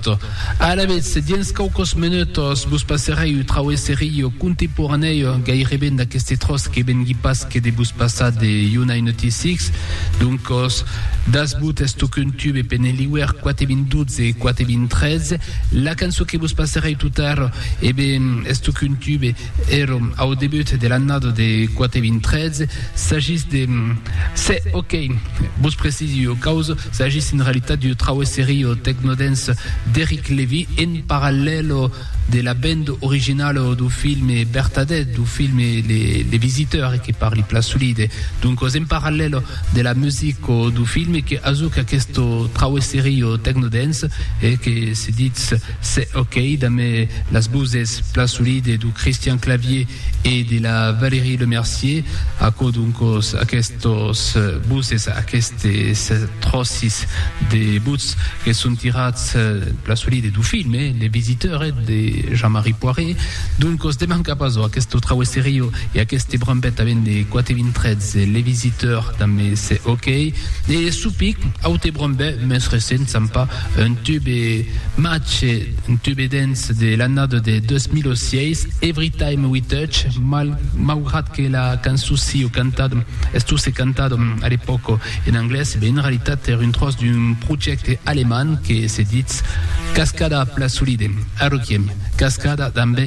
Tot. Alavetz, dins quauquos menutos vos passerai un trauesserillo contemporanèu gaireben d'aqueste tròç que vengui pas que de vos passar de Yunai Notícics. Doncos, dasbut estocun tube pe ne liuer quate vint dotze e quate vint trètze. La cançó que vos passerai totara, eben, estocun tube, Èrom au debut de l'annada de 4.013, s'agís de... Se, ok! Vos precisi ua causa, s'agís en realitat d'ua trauesseria au tecnodance d'Eric Levy en parallèl de la band originala dau filme Bertadette, dau filme Le Visiteur, que parli plan solide. Doncas, en parallèl de la musica dau filme, que ajuc aquesta trauesseria au tecnodance e que se ditz... Se ok damb las voses plan solide do Christian Clavier e de la Valérie Lemercier, aquò doncos aquestos voses, aquestes tròcis de votz que son tirats plan solide do film Le Visiteur de Jean-Marie Poiret, doncos demanca pas ò aqueste traue serio e aqueste brambet a vende quate vintrets Le Visiteur damb Se ok e Supic, aute brambet mès recent, Sampa, Un tube mache, un tube dens de l'annada de 2006, Everytime We Touch, mal, maugrat que la cançon siu cantada, estusse cantada a l'epòca en anglés, ben en realitat èra un tròç d'un projècte alemand que se ditz Cascada a pla solide, a Requiem, Cascada damb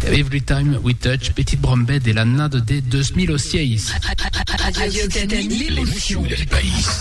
Everytime We Touch, petit brombet de l'annada de 2006. Radio Canu, l'emotion del país.